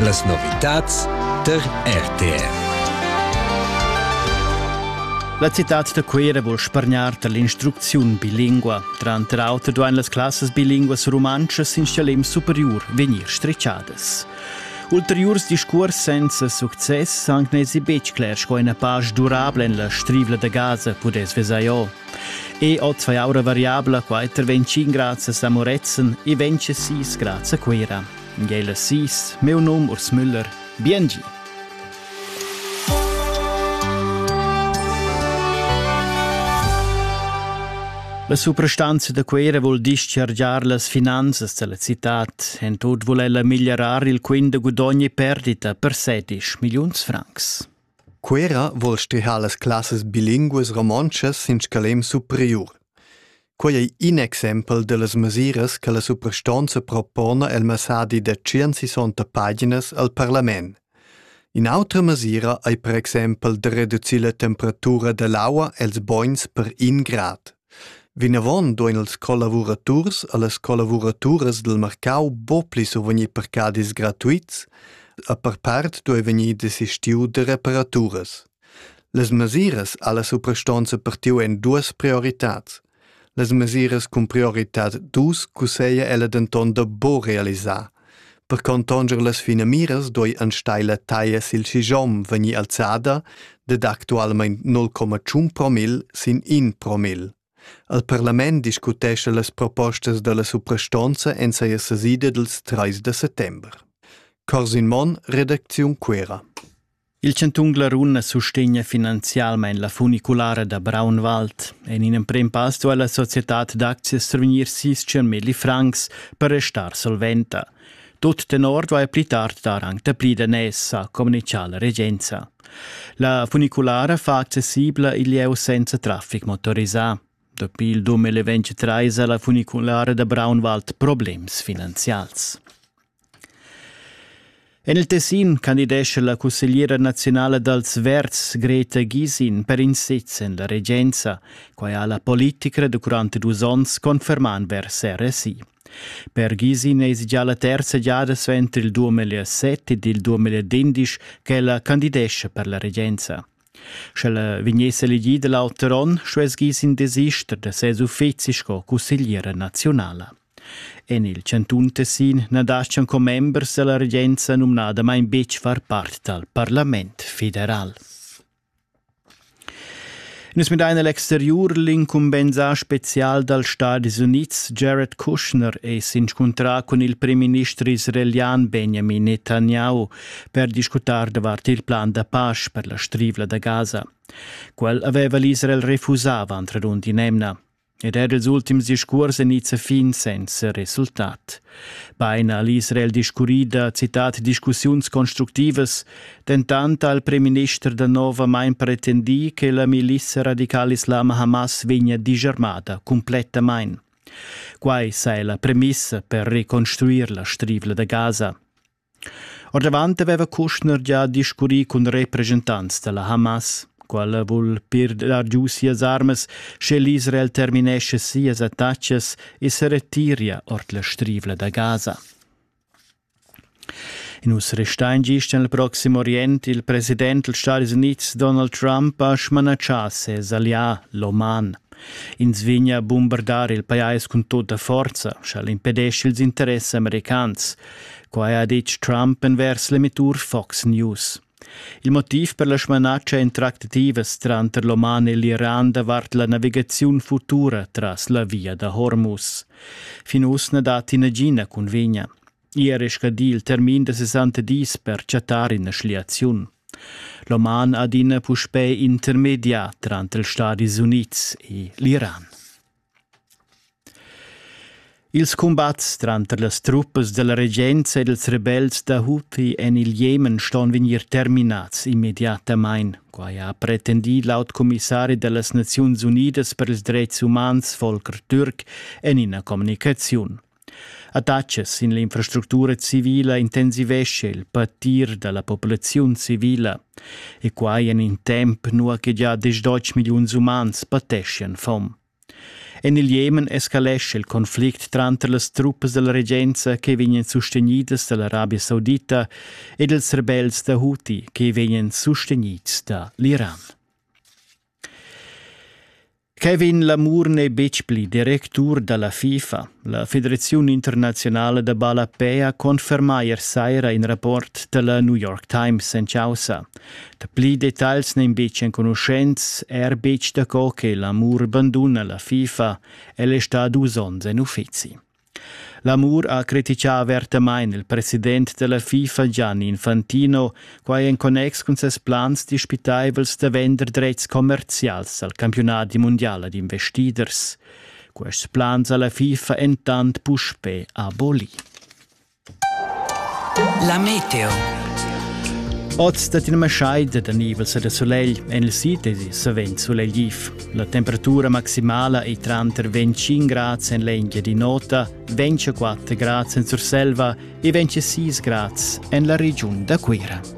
Las novitads tar RTR. La citad da Cuira vul spargnar tar l'instrucziun bilingua. Tranter auter duain las classas bilinguas rumantschas in schalem superiur vegnir stricciadas. Ulteriurs discurs senza success anc n'èsi betg cler sco ina pasch durabla en la strivla da Gaza pudess vesair. E oz fai aura variabla quai ter 25 grazias a Moretzen e 26 grazie a Cuira. Ngela Sis, meu num Urs Müller. Biengi! La suprastanza da Cuera vul dischargiar las finanzas della cittad. En tut vul ella miglierar il quint da gudogni perdita per 16 milliuns francs. Cuera vuol stehar las classas bilinguas romontschas sin scalem superiur. Quei ei in exempel dallas mesiras che la suprastonza propona el messadi da 160 paginas al parlament. In'autra mesira ei per exempel da reducir la temperatura dall'aua els bogns per in grad. Vinavon duein ils collavuraturs e las collavuraturas dil marcau buca pli survegnir parcadis gratuits e per part duei vegnir desistiu da reparaturas. Las mesiras alla suprastonza partiu en duas prioritads. Las mesiras cun prioritad dus cusseglia ella denton da buca realisar. Per contonger las finamiras doi enstagl la taglia sil schigiom vegnir alzada dad actualmein 0,1 promil sin 1 promil. Al parlament discutescha las propostas dalla suprastonza en seia sesida dils 3 da settember. Corsin Monn, redacziun Quera. Il chantun Glarun sustegna finanzialmain la funiculara da Braunwald. En in emprim pass duai la societad d'aczias survegnir sis milli francs per restar solventa. Tut tenor duai pli tard dar anc dapli daners, ha communitgà la regenza. La funiculara fa accessibla il lieu senza traffic motorisà. Dapi il 2023 ha la funiculara da Braunwald problems finanzials. En il Tessin candidescha la cussegliera naziunala dals Verds Greta Gysin per in sez en la regenza. Quai ha la politica durant dus onns confermà vers RSI. Per Gysin èsi già la terza giada suenter il 2007 ed il 2011 ch'ella candidescha per la regenza. Sch'ella vegniss elegida l'auter onn, stuess Gysin desister da ses uffizi sco cussegliera naziunala. En il chantun Tessin na dastgan commembers da la regenza numnadamain betg far part dal parlament federal. Nus midain a l'exteriur l'incumbensà spezial dals Stadis Unids Jared Kushner è s'inscuntrà cun il primminister israelian Benjamin Netanyahu per discutar davart il plan da pace per la strivla da Gaza. Quel aveva l'Israel refusà avant radund in'emna. ed er ils ultims discuors en izza fin senza resultat. Bein ha l'Israel discurrì da citat discussiuns constructivas, dentant ha il premierminister da nova main pretendì che la milissa radicala islama Hamas vegnia disarmada cumplettamain. Quai sai la premissa per reconstruir la strivla da Gaza. Oravant aveva Kushner gia discurrì cun represchentants da la Hamas. Quella vul pir dar giu sias armas, sche l'Israel terminescha sias attacas e se retiria ord la strivla da Gaza. In us restain gist en il Proxim Orient. Il president dals Stati Unids Donald Trump ha smanatschà ses allià, l'Oman. Ins vegna a bumbardar il pajais cun tutta forza, sch'el impedescha ils interess americans. Quai ha ditg Trump envers l'emettur Fox News. Il motiv per la smanatscha interactivas tranter l'Oman e l'Iran davart la navigaziun futura tras la via da Hormuz. Fin uss na datti nagina cunvegna. Ier è scadì il termin da 60 dis per chattar ina schliaziun. L'Oman adina puspè intermedià tranter ils Stadis Unids e l'Iran. Ils cumbats tranter las truppas dalla regenza ed ils rebels da Houthi en il Jemen ston vegnir terminads immediatamain. Quai ha pretendì laut commissari da las Naziuns Unidas per ils dretgs umans Volker Türk en ina communicaziun. Attachas sin l'infrastructura civila intensivescha il patir da la populaziun civila e quai en in temp nua che gia diesch milliuns umans pateschian fom. En il Jemen escalescha il conflict tranter las truppas della regenza che vegnan sustenidas dall'Arabia Saudita ed ils rebels da Houthi che vegnan sustenids da l'Iran. Kevin Lamour n'è betg pli directur da la FIFA. La federaziun internaziunala da ballapei ha confermà ier saira in rapport da la New York Times en chaussa. Dapli detagls n'èn betg enconuschents, er betg daco che Lamour banduna la FIFA. El è stà dus onns en uffizi. L'amur ha criticà avertamain il president da la FIFA Gianni Infantino, quai en connex cun ses plans dispitaivels da vender dretgs commerzials al campiunadi mundial ad investiders. Quests plans ha la FIFA entant puspè abolì. La meteo. Oz dat ina maschaida da nivels e da sulegl en il sid ed savens sulegliv. La temperatura maximala è tranter 25 grads en l'Engiadin'Ota, 24 grads en Surselva e 26 grads en la regiun da Cuira.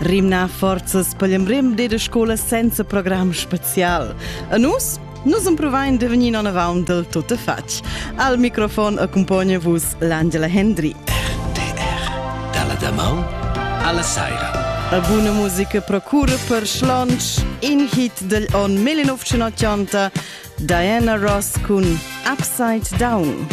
rimnar forzas per l'embrem de scola senza program special. A nus Nus improvaiam de venir non avant del tutte fatg. Al microfon accompagna vos l'Angela Hendry. RTR, dalla damau alla saira. A buona musica procura per schlonch in hit del on 1980 Diana Ross cun Upside Down.